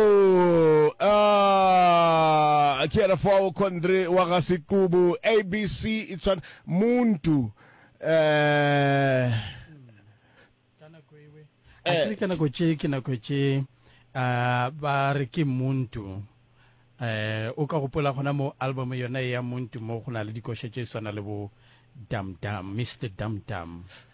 Ooh aah ke yena fao Kondre wa ga Sequbu ABC e tshwana Muntu eh A ke re ka nako tše ke nako tše ah, ba re ke Muntu eh o ka gopola gona mo album yona e ya Muntu mo go na le dikoša tše swana le bo Dam Dam Mr Dam Dam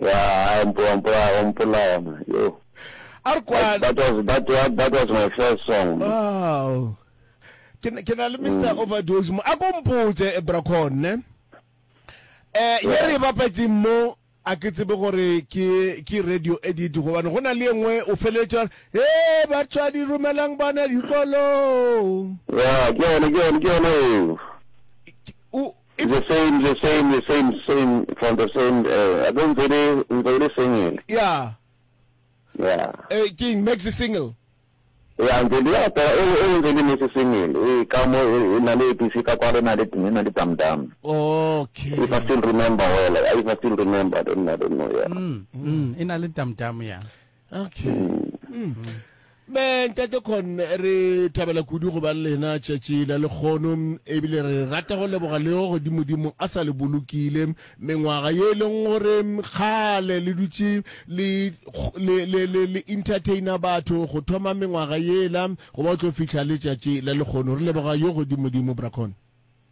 Ya, a o mpo- o mpo- o mpolaya ma, yo. A re That, kwane. that was, that, wa- that was my first song. Wow. Ke na- ke na le Mr. Overdose mo. A ko mpotse eh, Brakon, ne? Eh, ye Yeah. re e bapetseng mo a ke tsebe gore ke ke radio edit gobane go na le e nngwe o feleletša gore e batswadi romelang bana dikolong Ya, ke yone, ke yone, ke yone eo. o It's the same, the same, the same, same, from the same, eh, a ke ntse e le, ntse e le single. Ya, Yeah. eh, ke eng, Maxi Single? Ya, ntse di rapela, e, e ntse e le Maxi Single, e, ka mo, e, e na le APC ka kwalo, e na le, e na le Dam Dam. Okay. If I still remember well, if I still remember, I don't, I don't know, yeah. Mm, mm, e na le Dam Dam, ya. okay me ntate con re thabela kudu go ba le lena tšatši la lekgono ebile re rata go leboga leo godimodimo a sa le bolokile mengwaga ye e leng gore kgale le dutše le le- le- le- le entertaina batho go thoma mengwaga yela go ba o tlo fihla le tšatši la lekgono re leboga yo godimodimo bracon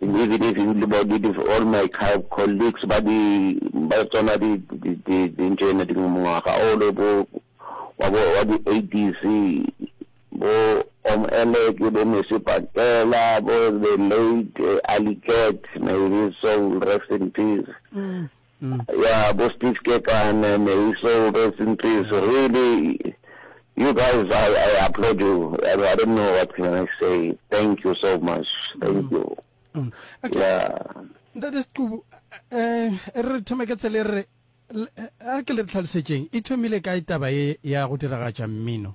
And even if you look at it, all my colleagues, ba di, ba tsona di, di, di, di ntše ena di mongwaga o le bo, wa bo, wa di 80s, bo Om Elek, bo Mesi Pakela, bo the late uh, Ali Cat, may his soul rest in peace. Mm. Yeah bo Steve Kekana, Maysol, rest in peace, really you guys I I applaud you I, I don't know what can I say thank you so much thank mm. you mm. Okay. yeah ntate sequbu eh, eh re thome ka tsele re a ke le tlhalosetseng e thomile kae taba e ya go diragatša mmino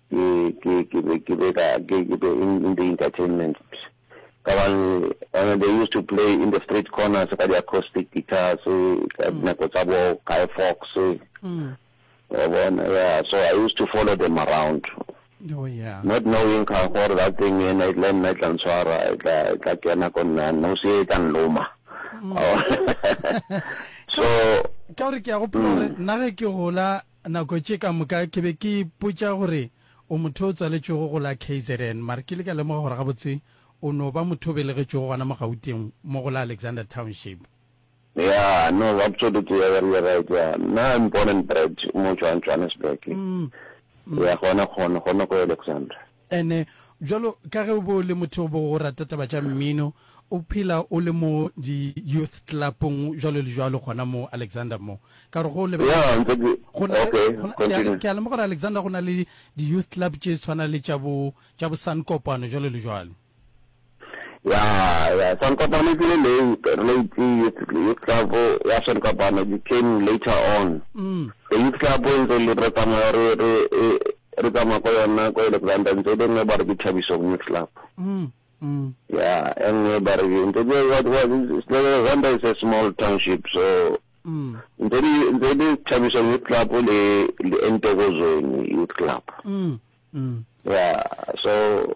Ke, ke, ke be, ke be ka, ke, ke be in, in the entertainment. Ka gobane, gobane they used to play in the street corners ka di-acoustic guitars, ka dinako tsa bo Guy Fawkes. Wa bona, yeah, so I used to follow them around. Oh, yeah. Not knowing ka gore that thing ena, e le nna e tla ntshwara, e tla, e tla kena ko nna, nosi e, e tla nloma. Wa bona. So, Ka gore ke a gopola gore nna ge ke gola, Nako tše ka moka ke be ke ipotša gore o motho o tswaletšwego go la kzn, mare ke ile ka lemoga gore gabotse o no ba motho o belegetšwego gona mo Gauteng mo go la Alexander Township. Ya, no, absolutely, ya ba re you're right, ya, nna I'm born and bred mo Johannesburg, ya, gona, gona, gona ko Alexander. And bjalo ka ge o be o le motho o bego o rata taba tša mmino, o phela o le mo di youth club-ong bjalo le bjalo gona mo Alexander mo. Ka gore ge o lebelela Yeah, ntse ke, go na le, okay, go na, ke a, continue. ke a lemoga gore Alexander go na le di youth club tše tshwana le tša bo, tša bo Sun Kopano bjalo le bjalo. ya ya Sankopane ke le late late youth youth club ya Sankopane ke came later on mm. the youth club e ntse le re tsamaya re re e, re tsamaya ko yona ko Alexander ntse le nngwe ba re ke Thabiso youth club mm, mm. ya e nngwe ba re ntse ke what what Alexander is a small township so mm. ntse le ntse le Thabiso youth club le le Entokozweni youth club mm, mm. ya so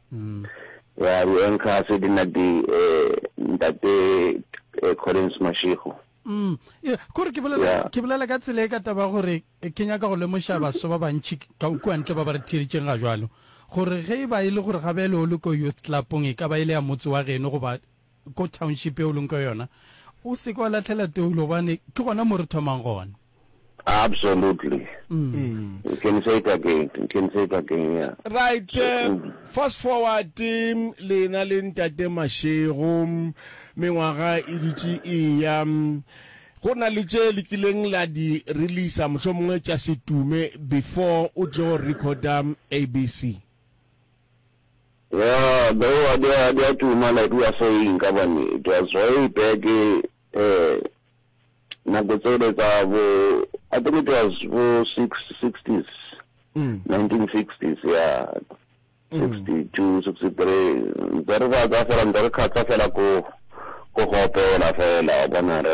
ya di anchor se di na di ntate Collins Mashego Mm. Yeah, kore ke bolela yeah. ke bolela ka tsela e ka taba gore ke nyaka go lemoša baso ba bantši ka kua ntle ba ba re theeditseng ga jalo gore ge e ba e le gore ga bele o le ko youth clubong e ka ba e le ya motse wa geno goba ko township e o leng ko yona o seke wa latlhela toulo gobane ke gona mo re thomang gona Absolutely. Mm. You can say it again. You can say it again, yeah. Right, So, eh, mm. fast forward eh, lena le ntate Mashego mengwaga e dutše e ya mm, go na le tše le kileng la di releasa mohlomongwe tša setume before o tle go recorda mm, ABC. Yeah, though a di a di a tuma like we are saying ka bane it was way back eh nako tsele tsa bo I think it was bo six sixties, mm. nineteen sixties, yeah. 62 63 ntse re batsa fela ntse re kgatsa fela ko ko go opela fela wa bona re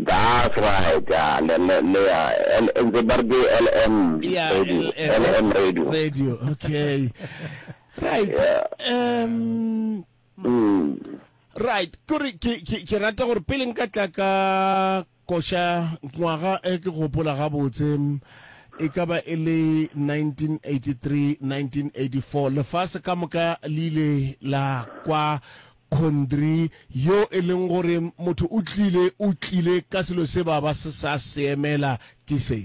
That's right, ya, le, le, le ya, L, ntse ba re ke LM Ya, radio, LM. LM radio. radio okay right Yeah. um Mm. right kore ke ke- ke rata gore pele nka tla ka koša ngwaga e ke gopola gabotse mm, e ka ba e le 1983 1984 lefase ka moka le ile la kwa Kondri, yo e leng gore motho o tlile, o tlile ka selo se ba ba se sa se emela, ke se.